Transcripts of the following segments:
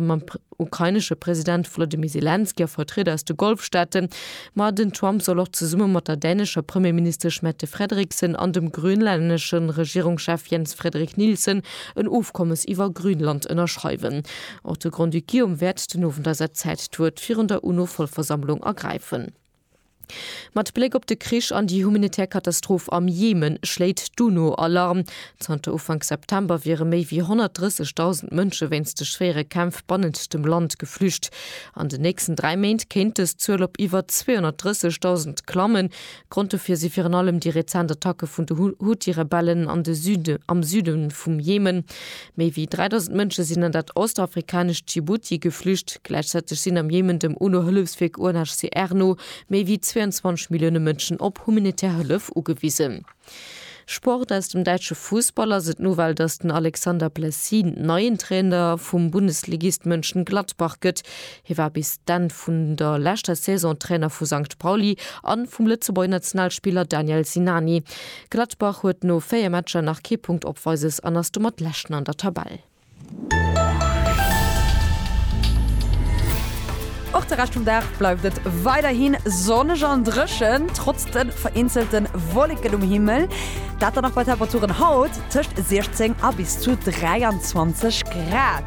mam ukrainesche President Volodymyr Selenskyj a Vertrieder aus de Golfstaaten, ma den Trump soll och zesumme mat der dänescher Premierministesch Mette Frederiksen an dem grönlännesche Regierungschef Jens Frederik Nielsen en Ofkommes iwwer Grönland ënnerschreiwen. Och de Grand-Duc Guillaume wäert den Owend a säit Zäit d'Wuert virun der UNO-Vollversammlung ergräifen. Mat Bléck op de Krich an déi humanitär Katastroph am Jemen schléit d'UNO Alarm. Zanter Ufank September wiere méi wéi 130.000 Mënsche wéinst de schwéiere Kämpf bannent dem Land geflücht. An den nächsten dräi Méint kéint dës Zuel op iwwer 230.000 klammen. Grond dofir si virun allem déi rezent Attacke vun de Huthi-Rebellen am Süde vum Jemen. Méi wéi 3.000 Mënsche sinn an dat ostafrikanescht Djibouti geflücht. Gläichzäiteg sinn am Jemen dem UNO-Hëllefswierk UNHCR no méi wéi 22 Millioune Mënschen op humanitär Hëllef ugewisen. Sport, Aus dem däitsche Fussball ass et d'Nouvelle, datt den Alexander Blessin neien Trainer vum Bundesligist Mönchengladbach gëtt. Hie war bis d'Enn vun der leschter Saison Trainer vu Sankt Pauli a vum Lëtzebuerger Nationalspiller Daniel Sinani. Gladbach huet no 4 Matcher nach kee Punkt Opweises an ass domat Leschten an der Tabell. Och de Rescht vum Dag bleift et weiderhi sonneg an dréchen, trotz de vereenzelte Wolleken um Himmel. Dat dann och bei Temperaturen haut tëscht 16 a bis zu 23 Grad.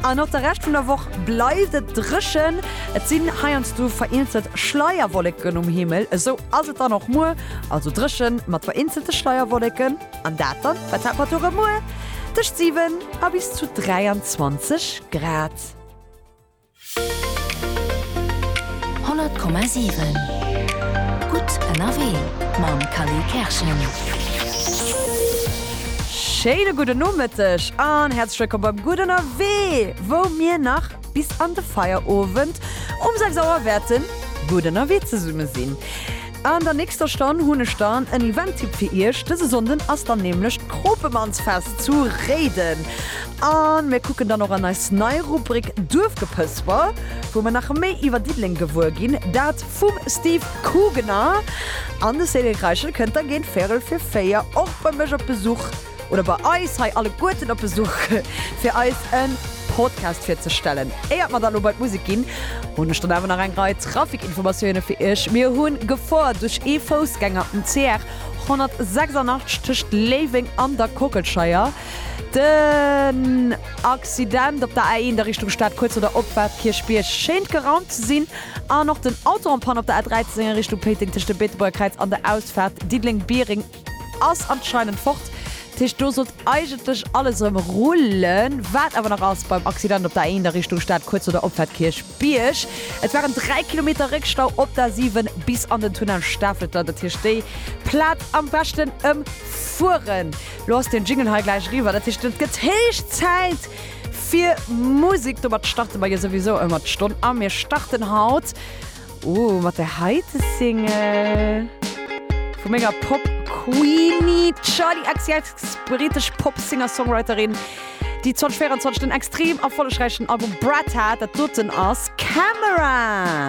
An och de Rescht vun der Woch bleift et dréchen. Et sinn heiansdo vereenzelt Schleierwolleken um Himmel. Esou ass et dann och muer, also dréchen mat vereenzelte Schleierwolleken. An dat dann bei Temperature muer tëscht 7 a bis zu 23 Grad. 100,7 gutt ënnerwee mam Kally Kerschen. Schéine gudden Nomëtteg an häerzlech wëllkomm beim Gutt Ënnerwee, wou mir nach bis an de Feierowend um 6 Auer wäerten gutt ënnerwee zesumme sinn. An der nächster Stonn hunn ech dann en Event-Tipp fir Iech. Dëse Sonnden ass dann nämlech d'Kropemannsfest zu Réiden a mir kucken dann och an eis nei Rubrik Duerfgepësper, wou mir nach méi iwwer Diddeleng gewuer ginn. Dat Vum Steve Kugener an de Céline Kreischel kënnt da géint véirel fir véier och bei mech op Besuch, oder bei eis hei alleguerten op Besuch, fir eis e Podcast virzestellen. Éiert mer dann elo bei d'Musek ginn, hunn ech dann awer nach eng Rei Trafikinformatioune fir iech. Mir hu Gefoer duerch ee Foussgänger um CR 186 tëscht Léiweng an der Kockelscheier. Den Accident op der A1 a Richtung Stad, kuerz no der Opfahrt Kierchbierg, schéint geraumt ze sinn. An och den Auto en panne op der A13 a Richtung Péiteng tëscht dem Beetebuerger Kräiz an der Ausfaart Diddeleng-Biereng ass anscheinend fort. Dat heescht do sollt eigentlech alles erëm rullen. Wat awer nach ass beim Accident op der A1 a Richtung Stad, kuerz no der Opfaart Kierchbierg. Et waren 3 Kilometer Réckstau op der A7 bis an den Tunnel Stafelter. Dat heescht déi Plaz am beschten ëmfueren. Lo ass den Jingle hei gläich eriwwer. Dat heescht et gëtt héich Zäit Fir Musik domat starte mer jo souwisou ëmmer d'Stonn a mir starten haut, oh, mat der heite Single vu menger Pop-Queenie Charli XCX, britesch Pop-Singer-Songwriterin, déi 2024 den extrem erfollegräichen Album Brat hat, dat doten ass Camera.